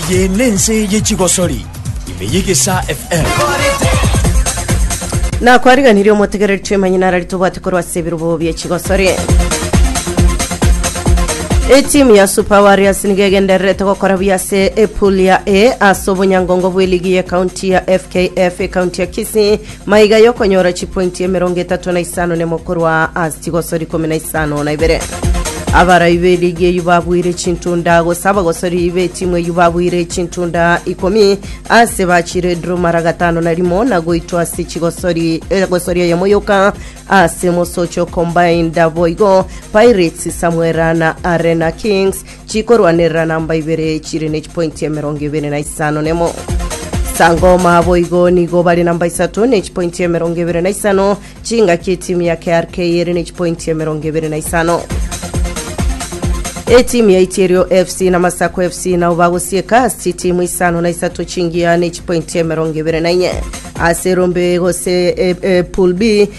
Eye nense ye chigosori ime y'egesa FM. nakwariganirie omotegereri twemanyi narari tobwate korwa ase ebirobo bie chigosori etimu ya super warriors nigo egendererete gokora buya ase epul ya a ase obonyangongo bw'eligi y'ekaunti ya fkf ekaunti ya kisii Maiga y'okonyora chipointi emerongo etato na isano nemo korwa ase chigosori ikomi na isano na ibere. Abarai be ligi eyio babuire chintunda gose abagosori be timu eyio babuire chintunda ikomi ase bachire draw mara gatano na rimo na goitwa ase chigosori egosori eyemo yoka ase mosocho combined boigo Pirates Samwera na Arena Kings chikorwanerera namba ibere chire ne chipointi emerongo ebere na isano nemo sangoma boigo nigo bare namba isato ne chipointi emerongo ebere na isano chingaki etimu ya krk ere ne chipointi emerongo ebere na isano etimu ya iterio fc na masako fc nabo bagosieka ase chitimu isano na isato chingiya ne chipointi emerongo ebere na inye ase rombe gose e, e, pool b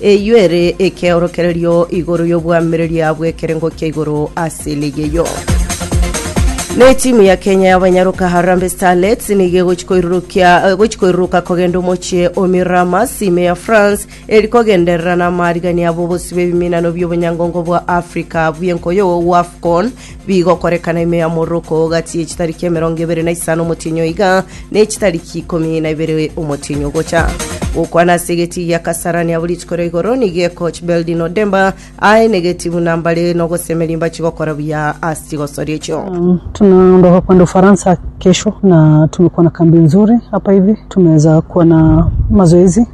Eyio ere ekeorokererio igoro y'obwamireria bw'ekerengo kia igoro ase ligi eyio. Na etimu ya Kenya y'abanyaroka Harambee Starlets nigo egochi koirurukia eh, gochi koiruruka kogenda omochie o Miramas ime ya France eri kogenderera na amaarigania abo bosio bw'ebiminano bi'obonyangongo bwa Africa bw'enkoyo WAFCON Bigokorekana ime ya omoroko gati ye chitariki emerongo ebere na isano omotienyo iga, na echitariki ikomi na ibere omotienyo ogocha. Gokwana ase egetii gia Kasarani abwo rituko ria igoro nigo ekoch Beldin Odemba aye negeti buna mbare nogosemeria mbachi gokora buya ase chigosoria echio. Tunaondoka kwenda Ufaransa kesho na tumekuwa na kambi nzuri hapa hivi, tumeweza kuwa na mazoezi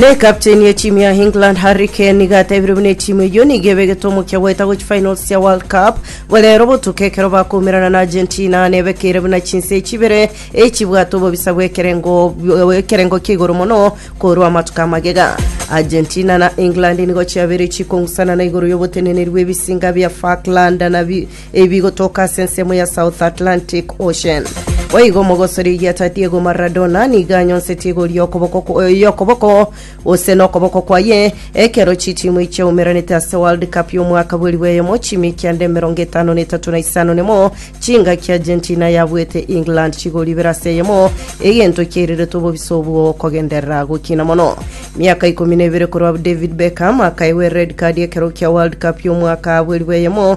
Na ekapteni ye timu ya England Harry Kane nigo atebire buna etimu eyio nigo ebegete omokia goeta gochia finals ya World Cup borero botuko ekero bakoumerana na Argentina na ebekeire buna chinse chibere echibwate obobisa bw'ekerengo bw- ekerengo kia igoro mono korwa amatuko amagega. Argentina na England nigo chiabeire chikong'usana na igoro y'oboteneneri bw'ebisinga bia Falkland na bi- Ebi gotoka ase ensemo ya South Atlantic Ocean. Boigo omogosori oyieta Diego Maradona nigo anyonseti egori y'okoboko kwa- y'okoboko gose nokoboko kwaye ekero chitimu ichaumeranete ase World Cup y'omwaka bweri bweyemo chiimi kianda emerongo etano na etato na isano nemo chingaki Argentina yabuete England chigori ibere ase eyemo egento kiairerete obobisa obwo kogenderera gokina mono. Miaka ikomi na ebere korwa David Beckham akaegwa ered card ekero kia World Cup y'omwaka bweri bweyemo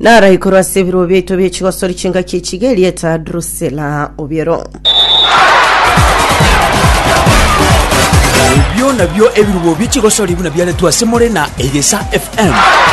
Naraikoro ase ebirobo biaito bie chigosori chingaki echiga erieta Drusela obiero. Ebio nabio ebirubo bie chigosori buna biaretwe ase more na Egesa FM.